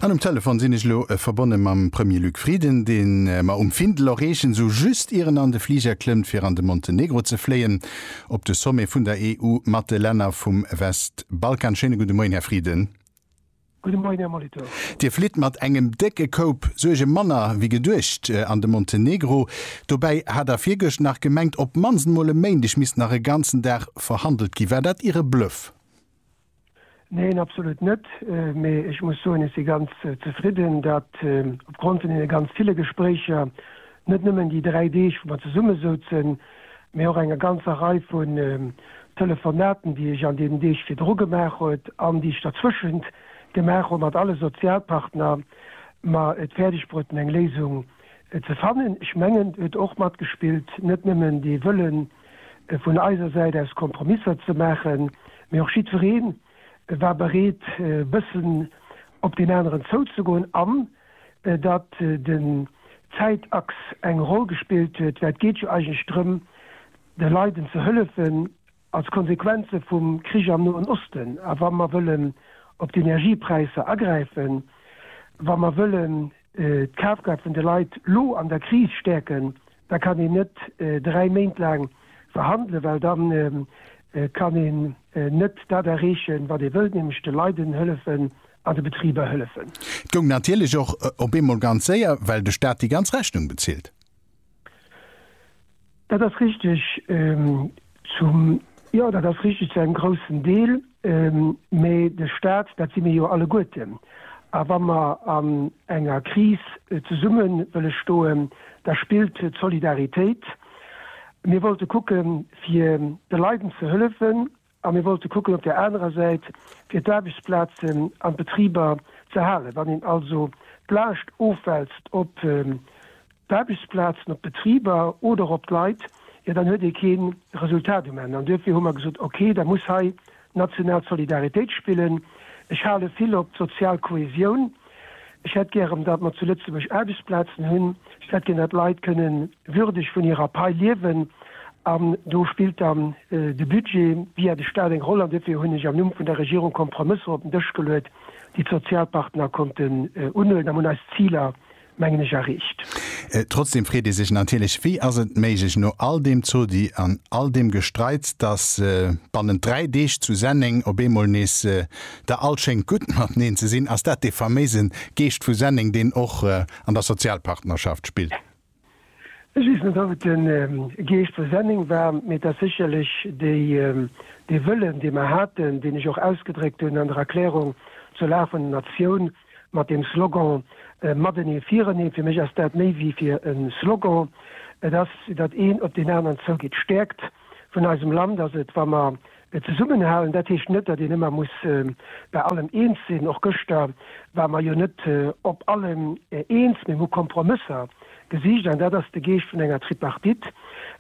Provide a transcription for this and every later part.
An um Telefon sinn ech elo verbonne mam Premier Luc Frieden, dee mer um Findel erreechen, esou just ier en an de Fliger klëmmt fir an de Montenegro ze fléien, op de Sommet vun der EU mat de Länner vum Westbalkan. Schéine gudde Moien, Här Frieden. Gudde Moien, Här Molitor. Dir flitt mat engem décke Koup Suerge manner wéi geduecht an de Montenegro. Dobäi hat Der virgëscht nach gemengt, op d'mannst emol e Méindeg misst nach e ganzen Dag verhandelt ginn. War dat Iere Bluff? Neen, absolut net. Mee ech muss soen, ech si ganz zefridden, datt opgrond vun deene ganz ville Gespréicher, net nëmmen déi dräi Deeg, wou mer zesummesouzen, mee och enger ganzer Rei vun Telefonaten, déi ech an deenen Deeg virdru gemaach huet an déi ech derzwëschent gemaach hu mat alle Sozialpartner, mer et fäerdeg bruechten, eng Léisung ze fannen. Ech mengen, do huet och matgespillt net nëmmen dee Wëllen, vun eiser Säit aus Kompromisser ze maachen, mee och jiddweree war bereet e bëssen op deen aneren zouzegoen an datt den Zäitachs eng Roll gespillt huet, well et geet jo eigentlech drëm, de Leiden ze hëllefen als Konsequenze vum Krich am Noen Osten. A wa mer wëllen op d'Energiepräisser agräifen, wa mer wëllen d'Kafkraaft vun de Leit lo an der Kris stäerken, Da kann een net dräi Méint laang verhandelen, well da kann een net dat erreechen, wat ee wëllt, nämlech de Leiden hëllefen an de Betriber hëllefen. Et goung natierlech och op eemol ganz séier, well de Staat déi ganz Rechnung bezilt. Dat ass richtig. Zum, jo, dat ass richtig, zu engem groussen Deel. Mä de Stat, dat si mir jo alleguerten. A wa mer an enger Kris zesumme wëlle stoen, da spillt d'Solidaritéit. Mir wollte kucken, fir de Leiden ze hëllefen, a mir wollte kucken op där anerer Säit, fir d'Aarbechtsplazen an d'Betriber z'erhalen. Wann een also d'Laascht ofwälzt op d'Aarbechtsplazen, op d'Betriber oder och op d'Leit, jo dann huet ee kee Resultat um Enn. An duerfir hu mer gesot, ok, da muss hei national d'Solidaritéit spillen. Ech hale vill op d'sozial Kohäsioun. Ech hätt gären, datt mer zu Lëtzebuerg Aarbechtsplazen hunn. Ech hätt gären, datt d'Leit kënne würdeg vun hirer Pai liewen. An do spillt dann de Budget via de Stat eng Roll. An duerfir hunn ech am Numm vun der Regierung Kompromësser op den Dësch geluet, déi d'Sozialpartner konnten unhuelen, an hunn eis Ziler mengen ech, erreecht. Trotzdem freet ee sech natierlech, Wéi ass et méiglech, no all deem Zodi an all deem Gestreits, dass bannent dräi Deeg zu Senneng op eemol nees da all schéngt gutt mateneen ze sinn? Ass dat dee faméise Geescht vu Senneng, deen och an der Sozialpartnerschaft spillt? Ech weess net ob et de Geescht vu Senneng war, mee et ass sécherlech dee Wëllen dee mer haten, deen ech och ausgedréckt hunn an der Erklärung zur Lag vun der Natioun mat deem Slogan Matenee firenee. Fir mech ass dat méi wéi fir e Slogan, et ass datt een op deen aneren zougeet. D'Stäerkt vun eisem Land ass et wa mer Et zesummenhalen, dat heescht net, datt een ëmmer muss bei allem eens sinn. Och gëschter ware mer jo net op allem eens, mee mir hu Kompromësser gesicht an dat ass de Geescht vun enger Tripartite.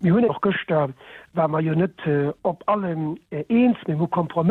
Mir hunn och gëschter ware mer jo net op allem eens, mee mir hu Kompromësser.